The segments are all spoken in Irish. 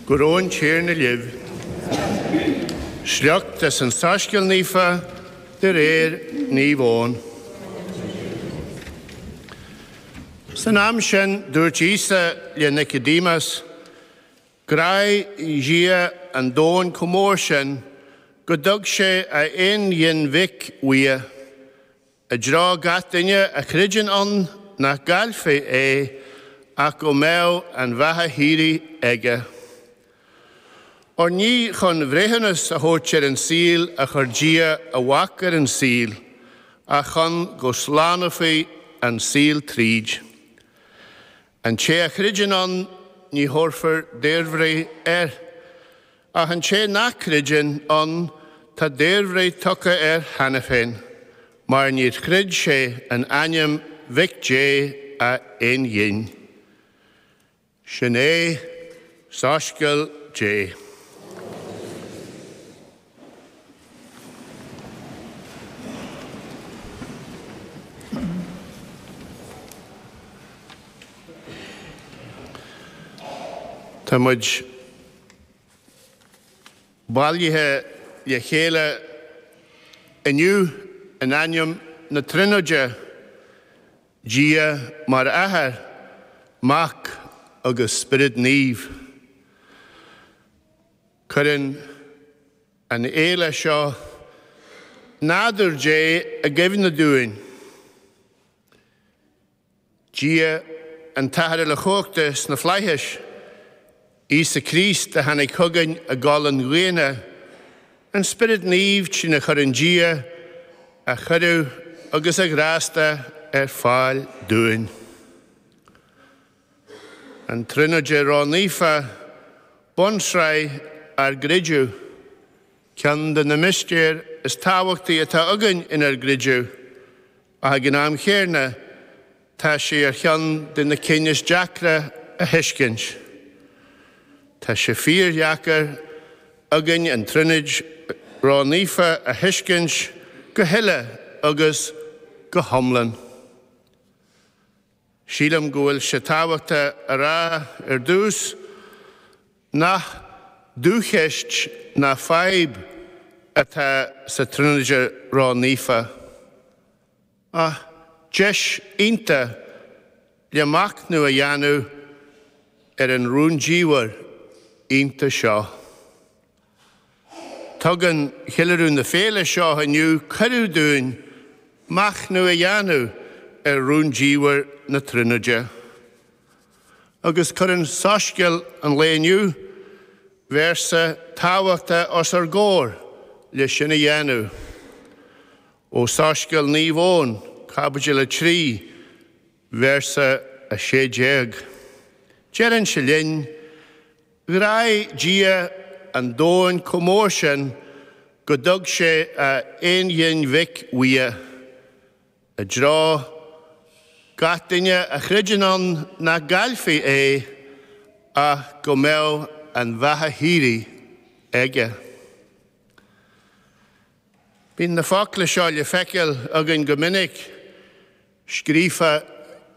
Go raibh an Tiarna libh. Sliocht as an Soiscéal Naofa de réir Naomh Eoin. San am sin dúirt Íosa le Nicodémas, Ghráigh Dia an domhan chomh mór sin gur thug sé a aonghin Mhic uaidh, I dtreo gach duine a chreideann ann nach gcaillfí é ach go mbeadh an bheatha shíoraí aige. Óir ní chun breithiúnas a thabhairt ar an saol a chuir Dia a Mhac ar an saol ach chun go slánófaí an saol tríd. An té a chreideann ann ní thabharfar daorbhreith air, ach an té nach gcreideann ann tá daorbhreith tugtha air cheana féin, mar níor chreid sé in ainm Mhic Dé a aonghin. Sin é Soiscéal Dé. Tá muid bailithe le chéile inniu in ainm na Tríonóide, Dia mar Athair, Mac agus Spiorad Naomh. Cuireann an fhéile seo nádúr Dé i gcuimhne dúinn. Dia an tAthair Uilechumhachta sna flaithis, Íosa Críost a tháinig chugainn i gcolainn dhaonna, an Spiorad Naomh trína gcuireann Dia a chuireadh agus a ghrásta ar fáil dúinn. An Tríonóide Ró-Naofa, Bunsraith ár gCreideamh. Ceann de na mistéir is tábhachtaí atá againn inár gcreideamh, ach ag an am chéanna tá sé ar cheann de na cinn is deacra a thuiscint. Tá sé fíordheacair againn an Tríonóid Ró-Naofa a thuiscint go huile agus go hiomlán. Sílim go bhfuil sé tábhachtach a rá ar dtús nach dúcheist ná fadhb atá sa Tríonóide Ró-Naofa, ach deis iontach le machnamh a dhéanamh ar an rúndiamhair iontach seo. Tugann ceiliúradh na féile seo inniu cuireadh dúinn machnamh a dhéanamh ar rúndiamhair na Tríonóide. Agus cuireann Soiscéal an lae inniu véarsa tábhachtach os ár gcomhair le sin a dhéanamh. Ó Soiscéal Naomh Eoin, caibidil 3, véarsa 16. Deireann sé linn, 'Ghráigh Dia an domhan chomh mór sin go dtug sé a aonghin Mhic uaidh, i dtreo, gach duine a chreideann ann nach gcaillfí é, ach go mbeadh an bheatha shíoraí aige'. Bíonn na focla seo le feiceáil againn go minic scríofa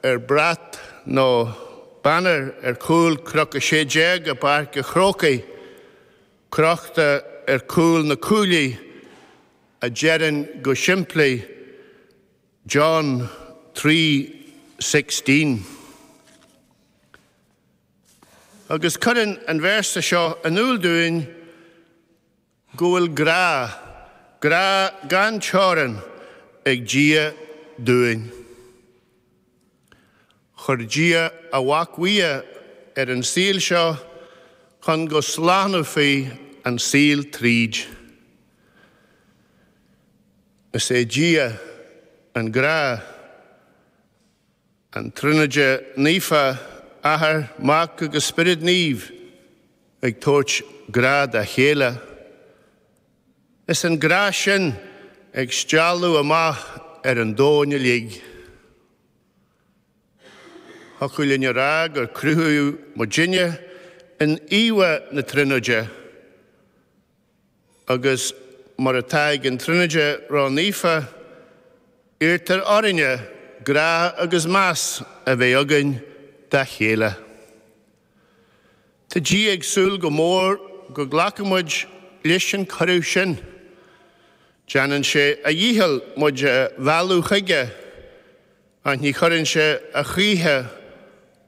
ar bhrat nó banner ar chúl Cnoc 16 i bPáirc a' Chrócaigh, crochta ar chúl na cuaillí, a deireann go simplí John three sixteen. Agus cuireann an véarsa seo in iúl dúinn go bhfuil grá, grá gan teorainn ag Dia dúinn. Chuir Dia a Mhac uaidh ar an saol seo chun go slánófaí an saol tríd. Is é Dia an Grá. An Tríonóid Naofa, Athair, Mac agus Spiorad Naomh, ag tabhairt grá dá chéile, is an grá sin ag stealladh amach ar an domhan uilig. Thiocfadh linn a rá gur cruthaíodh muidinne in íomhá na Tríonóide. Agus mar atá ag an Tríonóid Ró-Naofa, iarrtar orainne grá agus meas a bheith againn dá chéile. Tá Dia ag súil go mór go nglacfaidh muid leis an cuireadh sin. Déanann sé a dhícheall muid a mhealladh chuige, ach ní chuireann sé a choíche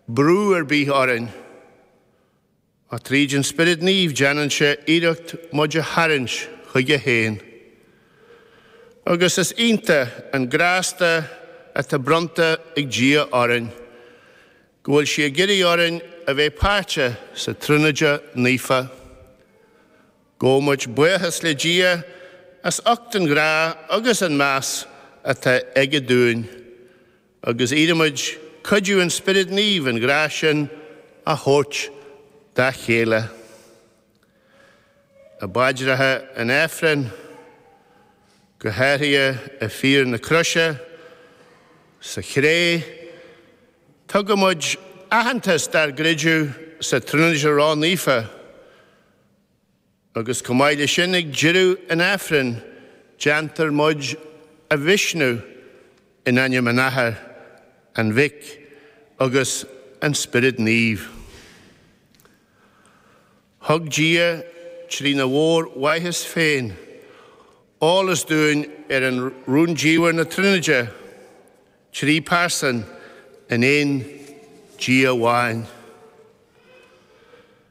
brú ar bith orainn. Ach tríd an Spiorad Naomh déanann sé iarracht muid a tharraingt chuige féin. Agus is iontach an grásta atá bronnta ag Dia orainn, go bhfuil sé ag iarraidh orainn a bheith páirteach sa Tríonóid Naofa. Gabhann muid buíochas le Dia as ucht an ghrá agus an meas atá aige dúinn. agus iarraimid cuidiú an Spioraid Naoimh an grá sin a thabhairt dá chéile. I bpaidreacha an Aifrinn, go háirithe i bhFíor na Croise sa Chré, tugaimid aitheantas dár gcreideamh sa Tríonóid Ró-Naofa, Agus chomh maith le sin ag deireadh an Aifrinn déantar muid a choisreacan in ainm an Athar, an Mhic agus an Spiorad Naomh. Thug Dia trína mhór mhaitheas féin eolas dúinn ar an rúndiamhair na Tríonóide, trí pearsain in aon Dia amháin.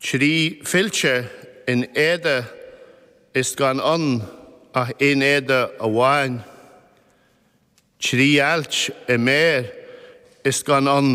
Trí fillte in éide is gan ann ach aon éide amháin, trí ailt i méar is gan ann